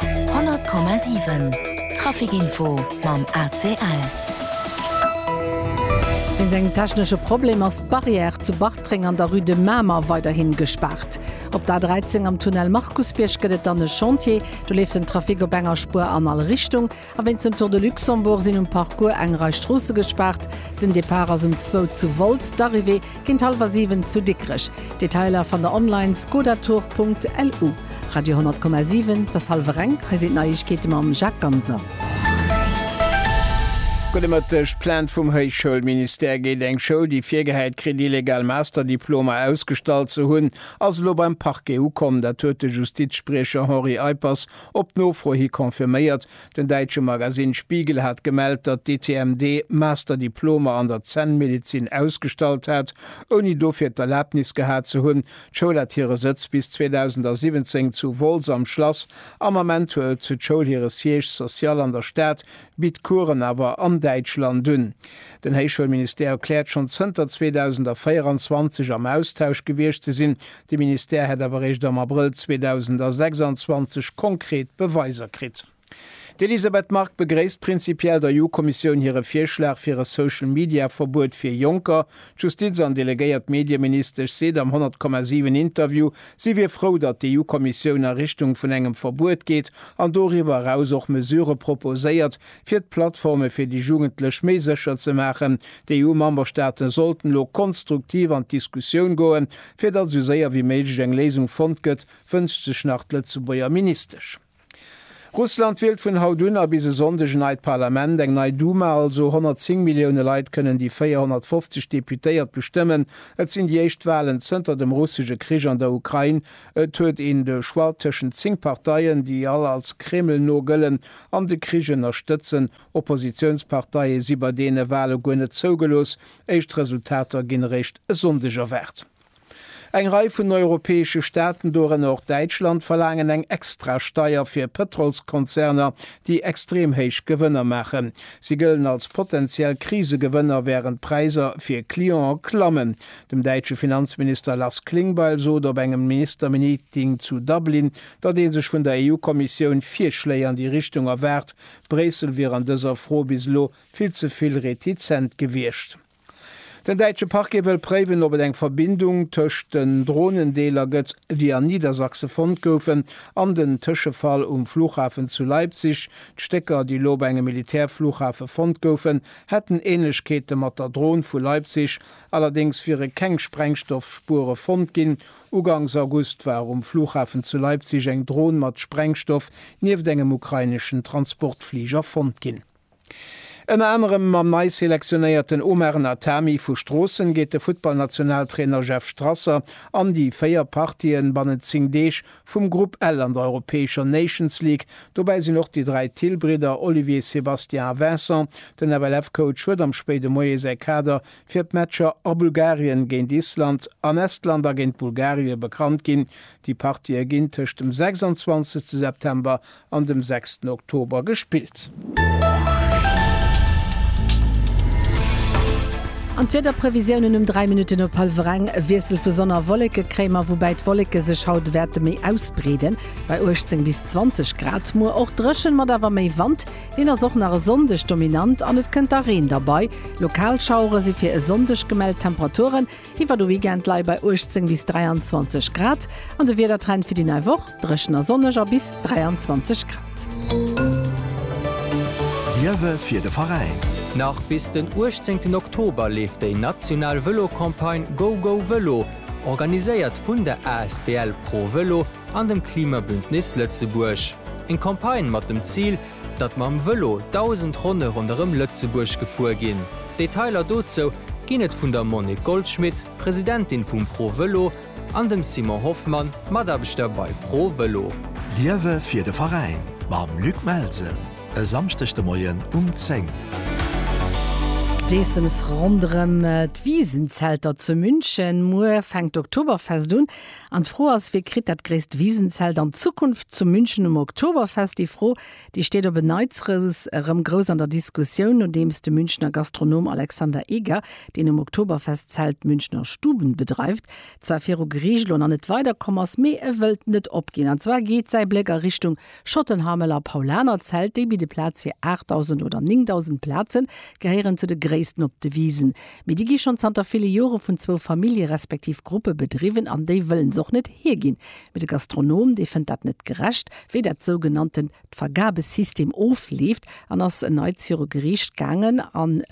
100 Komma 7 Trafic Info mam ACL. Wéinst engem technesche Problem ass d'Barrière zu Bartreng an der Rue de Mamer weiderhi gespaart. Op der A13 am Tunnel Markusbierg gëtt et dann e Chantier. Do leeft den Trafic op enger Spuer an all Richtung. A wéinst dem Tour de Luxembourg sinn um Parcours eng Rei Stroosse gespaart. Den Depart ass um zwou zu Wolz, d'Arrivée géint hallwer siwen zu Dikrech. Detailer fannt der online, skodatour.lu. Radio 10,7, Das halve Renk, hei sinn d'Neiegkeete mam Jacques Ganser. Gudde Mëtteg, D'Plainte vum Héichschoulministère géint eng Schoul, déi virgehäit kritt, illegal Masterdiplomer ausgestallt ze hunn, ass elo beim Parquet ukomm. Dat huet de Justizspriecher Henri Eippers Op Nofro hi confirméiert. Den däitsche Magasinn Spiegel hat gemellt, datt d'ITMD Master-Diplomer an der Zännmedezin ausgestallt hat, ouni dofir d'Erlabnis gehat ze hunn. D'Schoul hat hire Sëtz bis 2017 zu Wolz am Schlass. Am Ament huet d'Schoul hire Siège social an der Stad, bitt Coursen awer an Däitschland un. Den Héichschoulministère erkläert, schonn zënter 2024 am Austausch gewiescht ze sinn, De Ministère hätt awer eréischt am Abrëll 2026 konkret Beweiser kritt. D'Elisabeth Margue begréisst prinzipiell der EU-Kommissioun hire Virschlag fir e Social-Media-Verbuet fir Jonker. D'Justiz an delegéiert Medieministesch seet am 100,7 Interview, si wier frou, datt d'EU-Kommissioun a Richtung vun engem Verbuet geet an doriwwer eraus och Mesurë proposéiert, Fir d'Plattforme fir déi Jugendlech méi sécher ze maachen, D'EU-Memberstaaten sollten elo konstruktiv an d'Diskussioun goen, fir datt esou séier wéi méiglech eng Léisung fonnt gëtt, wënscht sech nach d'Lëtzebuerger Ministesch. Russland wielt vun haut un a bis e Sonndeg en neit Parlament, eng nei Duma also. 110 Millioune Leit kënnen déi 450 Deputéiert bestëmmen. Et sinn déi éischt Walen zënter dem russesche Krich an der Ukrain, Et huet een de Choix tëschent zéng Parteien, déi all als Kreml-no gëllen an de Krich ënnerstëtzen. Oppositiounsparteie si bei deene Wale guer net zougelooss. Éischt Resultater ginn eréischt e Sonndeg erwaart. Eng Rei vun europäesche Staaten, dorënner och Däitschland, verlaangen eng Extrasteier fir Pëtrolskonzerner, déi extrem héich Gewënner maachen. Si gëllen als potentiell Krisegewënner, wärend d'Präisser fir Clientë klammen. Dem däitsche Finanzminister Lars Klingbeil sot op engem Ministermeeting zu Dublin, datt ee sech vun der EU-Kommissioun Virschléi an déi Richtung erwaart. Bréissel wier an dëser Fro bis elo vill ze vill retizent gewiescht. Den däitsche Parquet wëll préiwen, ob et eng Verbindung tëscht den Dronen-Deeler gëtt, déi an Niedersachse fonnt goufen, an den Tëschefall um Flughafen zu Leipzig. D'Stécker, déi elo op engem Militärflughafe fonnt goufen, hätten Änlechkeete mat der Dron vu Leipzig, Allerdéngs wiere keng Sprengstoffspuere fonnt ginn. Ugangs August war um Flughafen zu Leipzig eng Dron mat Sprengstoff nieft engem ukraineschen Transportfliger fonnt ginn. Ënner anerem mam nei selektionéierten Omar Natami vu Stroossen geet de Futtballnationaltrainer Jeff Strasser an déi véier Partien bannent 10 Deeg vum Grupp L an der europäescher Nations League. Dobäi sinn och déi dräi Thill-Bridder Olivier, Sébastien a Vincent. Den FLF-Coach huet am spéide Moie säi Kader fir d'Matcher a Bulgarien géint Island an Estland a géint Bulgarie bekannt ginn. Déi Partië ginn tëscht dem 26 September an dem 6 Oktober gespillt. An d'Wiederprevisiounen um 3 Minutten op hallwer eng, E Wiessel vu Sonn a Wolleke kréie mer, woubäi d'Wolleke sech haut wäerte méi ausbreeden, bei 18 bis 20 Grad. Muer och dréchen, mat awer méi Wand. Hien ass och nach e Sonndeg dominant an et kënnt da Reen derbei. Lokal Schauere si fir e Sonndeg gemellt. Temperaturen iwwer de Weekend leie bei 18 bis 23 Grad an de Wiedertrend fir déi nei Woch, Dréchen a sonneg a bis 23 Grad. Liewe fir de Veräin! Nach bis den 18 Oktober leeft déi national Vëlo-Campagne GoGoVëlo, organiséiert vun der asbl Pro Vëlo, an dem Klimabündnis Lëtzebuerg eng Campagne mat dem Zil, datt mam Vëlo 1.000 Ronne ronderëm Lëtzebuerg gefuer ginn. Detailer dozou ginn et vun der Monique Goldschmit, Presidentin vum Pro Vëlo, an dem Simon Hoffmann, Mataarbechter bei Pro Vëlo. Liewe fir de Veräin mam Luc Melsen e Samschdeg de Moien um 10. D'Eessems ronderëm d'Wiisenzelter zu München. Muer fänkt d'Oktoberfest un. An d'Fro ass, Wie kritt dat gréisst Wisenzelt an Zukunft zu München um Oktoberfest? Déi Fro, déi steet op en Neizrous erëm grouss an der Diskussioun, nodeems de Münchener Gastronom Alexander Eger, deen um Oktoberfestzelt Münchner Stuben bedreift, zwar viru Geriicht lon an net weiderkomm ass, mee e wëllt net opginn. An zwar geet säi Bléck a Richtung Schottenhamel a Paulanerzelt, déi bidde Plaz fir 8.000 oder 9.000 Plazen, gehéieren zu de gréissten op de Wisen. Mee déi gi schonn zanter ville Jore vun zwou Famillje respektiv Gruppe bedriwwen an déi wëllen se och net hierginn. Mee de Gastronom, dee fënnt dat net gerecht, wéi dat sougenannten d'Vergabesystem ofleeft an ass en Neits viru Geriicht gaangen. An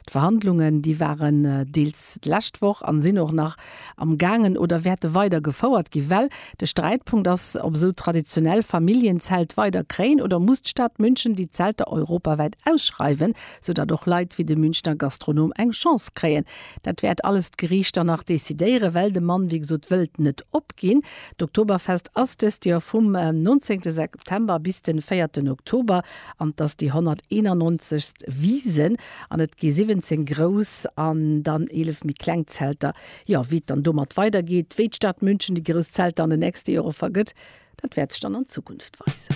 d'Verhandlungen, déi waren deels d'lescht Woch an sinn och nach am gaangen oder wäerte weider gefouert ginn, well de Sträitpunkt ass, ob esou traditionell Familljen-Zelt weider kréien oder muss d'Stad München déi Zelter europawäit ausschreiwen, sou datt och Leit wéi de Münchner Gastronom eng Chance kréien. Dat wäert alles d'Geriicht dann nach decidéieren, well de Mann, wéi gesot, wëllt net opginn. D'Oktoberfest ass dëst Joer vum 19 September bis de véierten Oktober an 't ass déi 191. Wiesn. An et gi 17 grouss an dann 11 méi kleng Zelter. Jo, wéi et dann domat weidergeet, wéi d'Stad München déi grouss Zelter an den nächste Jore vergëtt, dat wäert sech dann an Zukunft weisen.